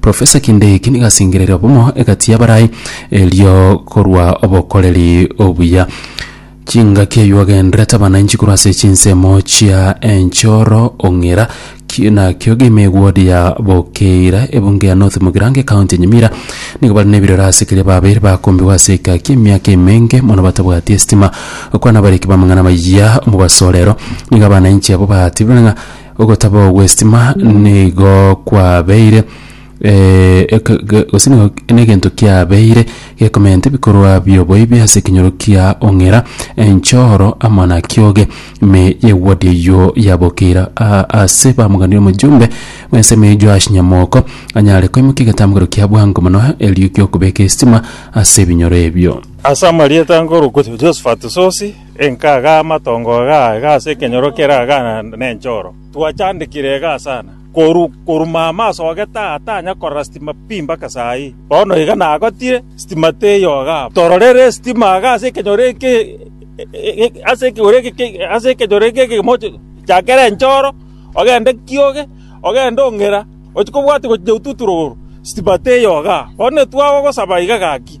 Profesa kende eki nigasingerere obomo egati y'abarai, erio korwa obokoreri obuya. Chingaki eyio agenderete abananchi korwa ase chinsemo chia enchoro ong'ira ki- na kiogima eward ya bokeira ebunge ya north mogirango ekaunti ya nyamira nigo bare nebirero ase keria babeire bakombigwa ase egaki emiaka emenge mono batabwati estima okwana abariki b'amang'ana amayia omobaso orero nigo abananchi abo batebire ng'a Ogotaba gw'estima nigo kwabeire gose nigo negento kiabeire gekomenta ebikorwa bi'oboibi ase ekenyoro kia Ong'ira, enchoro, amo na Kioge. Ime y'ewodi eyio yabokeire aase bamoganire omojumbe bw'ensemo ya Joash Nyamoko, anyare koimokia egetambukero kia bwango mono erio gi'okobeka estima ase ebinyoro ebio. Ase amarieta nkorokwa Josephat Sosi, Enka aga amatongo aga aiga ase ekenyoro kere aga nenchoro, twachandekire igaa sana, koru koru mama asogete aa tanya korora sitima pi mpaka saa ii. Bono iga nagotire, sitima teiyo iga abo. Tororere sitima aga ase ekenyoro eke ase ekegoro eke ase ekenyoro eke egemo chakere enchoro, ogende kioge, ogende ong'era, ochia kobwati gochinya otuturoro, sitima teiyo iga aa. Bono etwagogosaba iga gaki.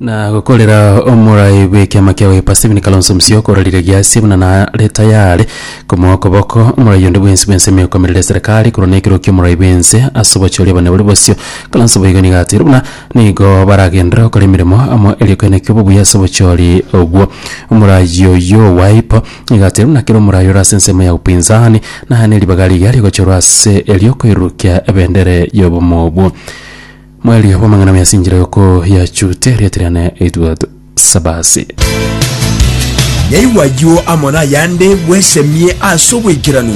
na gokorera omorai bw'ekiama kia UEFA Stephen Kalonzo Musyoka okorarire giasie buna nare tayare komoa okoboko omorai onde bwensi bw'ense emekomerere eserekari korwa na ekero ki'omorai bw'ense ase obochori obonene boria bosio. Kalonzo boigo nigo ateire buna nigo baragenderere gokora emeremo amo eriokana kia obobuya ase obochori obwo. Omorai oyio Wiper nigo ateire buna kera omorai ore ase ensemo ya upinzani naye neribaga riria rigochorwa ase eriokoirurukia ebendera y'obomo obwo. Mweri bw'amang'ana mesinchire oko yachute erieta riane Edward Sabasi. Yaigwa ayio amo nayande bwesemie ase oboikeranu.